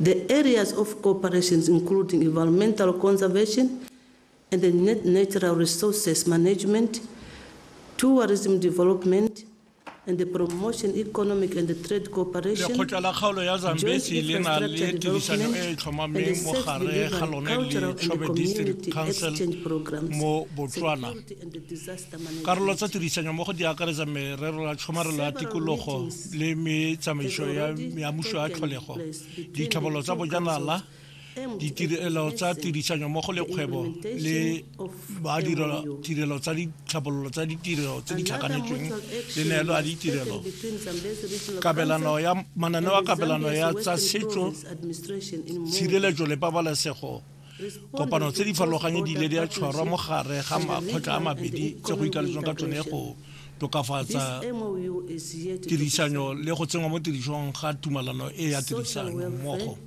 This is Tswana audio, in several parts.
The areas of cooperation include environmental conservation and natural resources management, tourism development, and the promotion economic and trade cooperation. Lekgotla la kgaolo ya Zambezi le na le tirisano e e tlhomameng mo gare ga lone le Chobe District Council mo Botswana. Karolo tsa tirisanyo mo go di akaretsa merero ya tshomarelo ya tikologo le metsamaiso ya muso ya tlholego ditlhabololo tsa bojanala ditirelo tsa tirisanyo mo go lekgwebo le badirelo tsa ditlhabololo tsa ditirelo tse di tlhakanetsweng le neelo ya ditirelo kabelano ya mananeo a kabelano ya tsa setso tshireletso le pabalesego kopano tse di farologanyo di ile di a tshwarwa mo gare ga makgotla a mabedi tse go ikaletswang ka tsone go tokafatsa tirisanyo le go tsenngwa mo tirisong ga tumalano e ya tirisano mmogo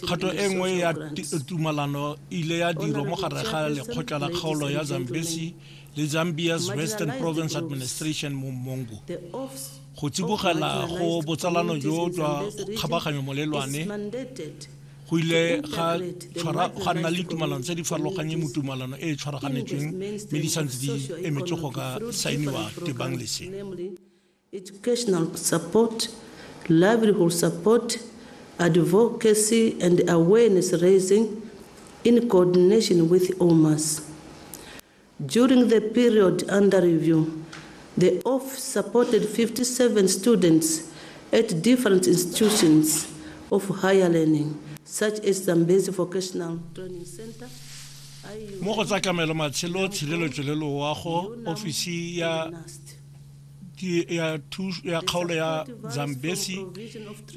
kgato e nngwe ya tumalano ile ya dirwa mo gare ga lekgotla la kgaolo ya zambesi le zambia's western province administration mo mongo go tsibogela go botsalano jo jwa kgabaganyo molelwane go ile ga tshwara ga nna le tumalano tse di farologanye mo tumalano e e tshwaraganetsweng mme di santse di emetse go ka saeniwa tebang lese educational support livelihood support advocacy and awareness raising in coordination with omas During the period under review, the OFF supported 57 students at different institutions of higher learning, such as Zambezi Vocational Training Center, IUT, mo go tsa kamelo, matshelo, tshireletso le loago, ofisi ya. ya kgaolo ya Zambesi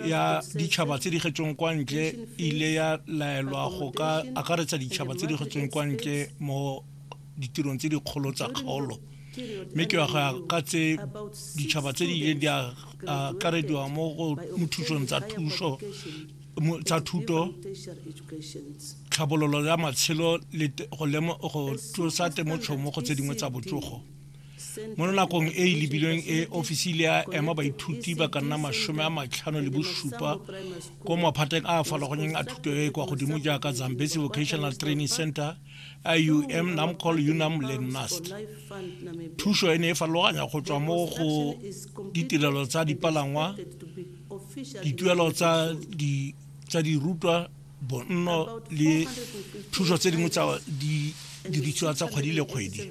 ya ditšhaba tse di getsweng kwa ntle e ile ya laelwa go ka akaretsa ditšhaba tse di getsweng kwa ntle mo ditirong tse dikgolo tsa kgaolo mme ke ya ka tse ditšhaba tse di ileng di akarediwa mo go mothusong tsa thuso tsa thuto tlhabololo ya matshelo le go tlosa temotšhomo go tse dingwe tsa botsogo mo nakong e e lebilweng e ofisi le a ema baithuti ba ka nna masome a matlhano le bosupa ko maphateng a a farologanyeng a thuto e e kwa godimo jaaka zambesi vocational training center ium namcol unam le nast thuso e ne e farologanya go tswa mo go ditirelo tsa dipalangwa dituelo tsa dirutwa bonno le thuso tse dingwe tsa didiriswa tsa kgwedi le kgwedi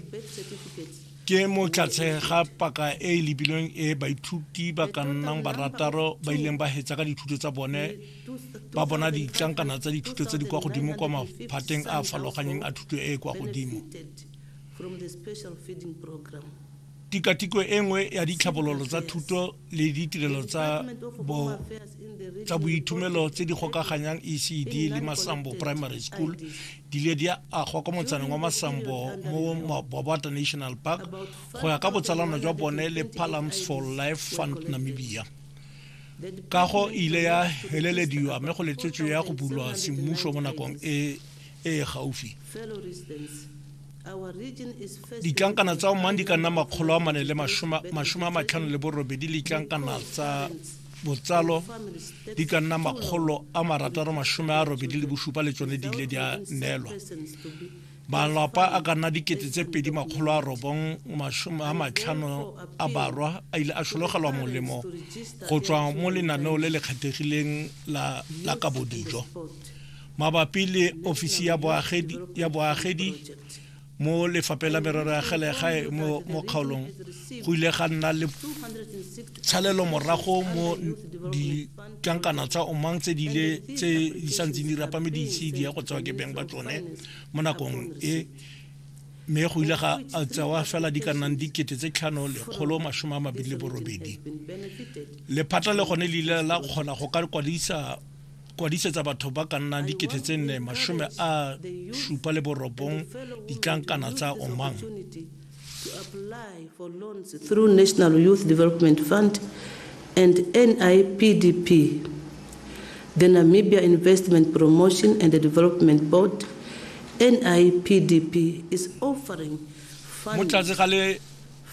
ke mo tlatse ga paka e e lebilweng e baithuti ba ka nnang barataro ba ileng ba hetsa ka dithuto tsa bone ba bona ditlankana tsa dithuto tse di kwa godimo kwa maphateng a a farologaneng a thuto e e kwa godimo tikatiko e nngwe ya ditlhabololo tsa thuto le ditirelo tsa bo tsa boithomelo tse di gokaganyang ecd le masambo primary school di le di agwa kwa motsaneng wa masambo mo mabobata national park go ya ka botsalano jwa bone le palams for life fund namibia kago e ile ya helelediwa mme go letswetswe ya go bulwa semmušo mo nakong e e gaufi ditlankana tsa omang di ka nna makgolo a mane le masome a matlhano le borobedi le ditlankana tsa botsalo di ka nna makgolo a marataro masome a robedi le bosupa le tsone di ile di a neelwa malapa a ka nna dikete tse pedi makgolo a robong masome a matlhano a barwa a ile a sologelwa molemo go tswa mo lenaneo le le kgethegileng la kabodijo mabapi le ofisi ya boagedi ya boagedi mo lefapheng la merero ya gelegae mo kgaolong go ile ga nna le tshalelo morago mo ditlankana tsa omang tse di ile tse di santseng di rapame di ise di ya go tsewa ke beng ba tsone mo nakong e mme go ile ga tsewa fela di ka nnang dikete tse tlhano lekgolo masome a mabedi le borobedi lephata le gone le ile la kgona go ka kwadisa kwadisetsa batho ba ka nnang dikete tse nne masome a supa le borobong ditlankana tsa omang to apply for loans through National Youth Development Fund and NIPDP, the Namibia Investment Promotion and Development Board, NIPDP, is offering funding.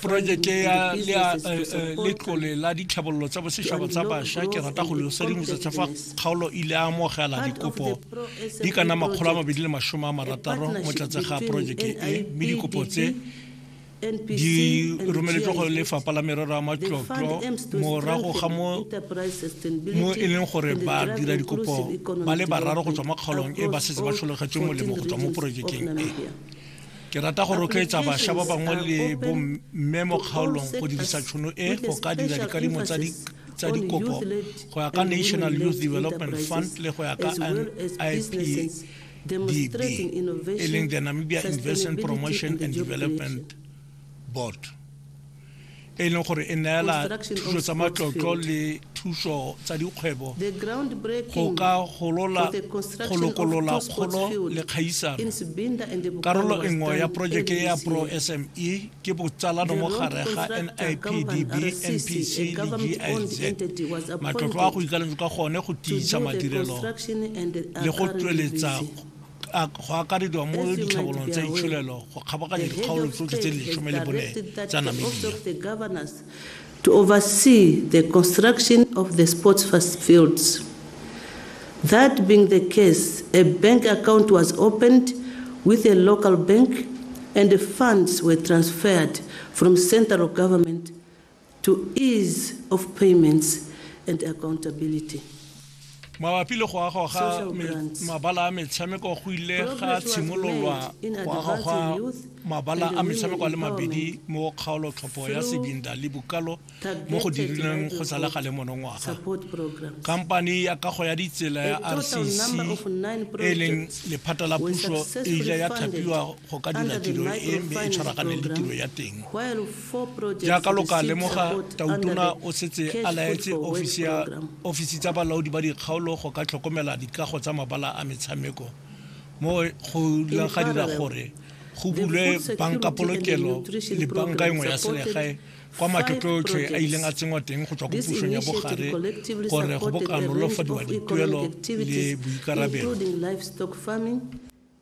projeke ya eh, eh, letlole la ditlhabololo tsa bosetšhaba tsa bašwa ke rata go leosa dingwetsa tsa fa kgaolo ile a amogela dikopo di ka nna makgolo a mabedi le masome a marataro mo tlatse ga projeke e mme dikopo tse di romeletswe go lefapha la merero ya matlotlo morago ga mo e leng gore ba dira dikopo ba le bararo go tswa mo kgaolong e ba setse ba tlholegetswe molemo go tswa mo porojekeng e Ke rata go rotloetsa basha ba bangwe le bomme mo kgaolong go dirisa tšhono e go ka dira dikadimo tsa di tsa dikopo go ya ka National Youth Development Fund le go ya ka NIPDB e leng the Namibia Investment Promotion and Development Board. e e leng gore e neela thuso tsa matlotlo le thuso tsa dikgwebo go ka golola go lokolola kgolo le kgaisano karolo e nngwe ya porojeke ya pro sme ke botsalano mo gare ga nipdb npc le giz matlotlo a go ikaeletswe ka gone go tiisa madirelo le go tsweletsa a go akarediwa mo ditlhabolong tsa itsholelo go kgabaganya dikgaolo tsotlhe tse di lesome le bone tsa namibia to oversee the construction of the sports fields. That being the case, a bank account was opened with a local bank and the funds were transferred from central government Mabapi le go agwa ga mabala a metshameko go ile ga tshimololwa go agwa gwa mabala a metshameko a le mabedi mo kgaolotlhopho ya Sibinda le Bukalo mo go dirilweng go sa le gale monongwaga. Kampani ya kago ya ditsela ya RCC e e leng lephata la puso e ile ya thapiwa go ka dira tiro e mme e tshwaraganeng le tiro ya teng jaaka lo ka lemoga tautona o setse a laetse ofisi tsa balaodi ba dikgaolo go ka tlhokomela dikago tsa mabala a metshameko mo go ileng ga dira gore go bulwe banka polokelo le banka engwe ya selegae kwa matlotlo otlhe a ileng a tsenngwa teng go tswa ko pusong ya bogare gore go bokanolofadiwa dituelo le boikarabelo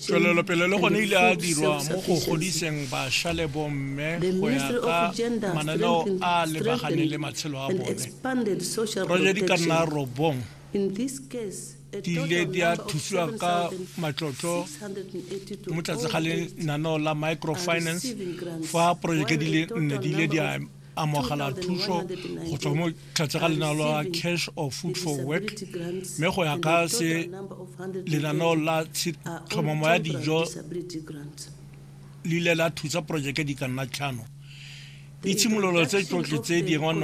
tswelelopele le gone ile a dirwa mo go godiseng basha le bomme go ya ka mananeo a lebaganeng le matshelo a bone roja di ka nna robong di ile di a thusiwa ka matlotlo mo tlase ga lenaneo la microfinance fa porojeke di le nne di ile di a amogela thuso go tswa mo tlhatse ga lenaneo la cash or food for work mme go ya ka se lenaneo la tlhomamo ya dijo le ile la thusa porojeke di ka nna tlhano ditshimololo tse tsotlhe tse dingwe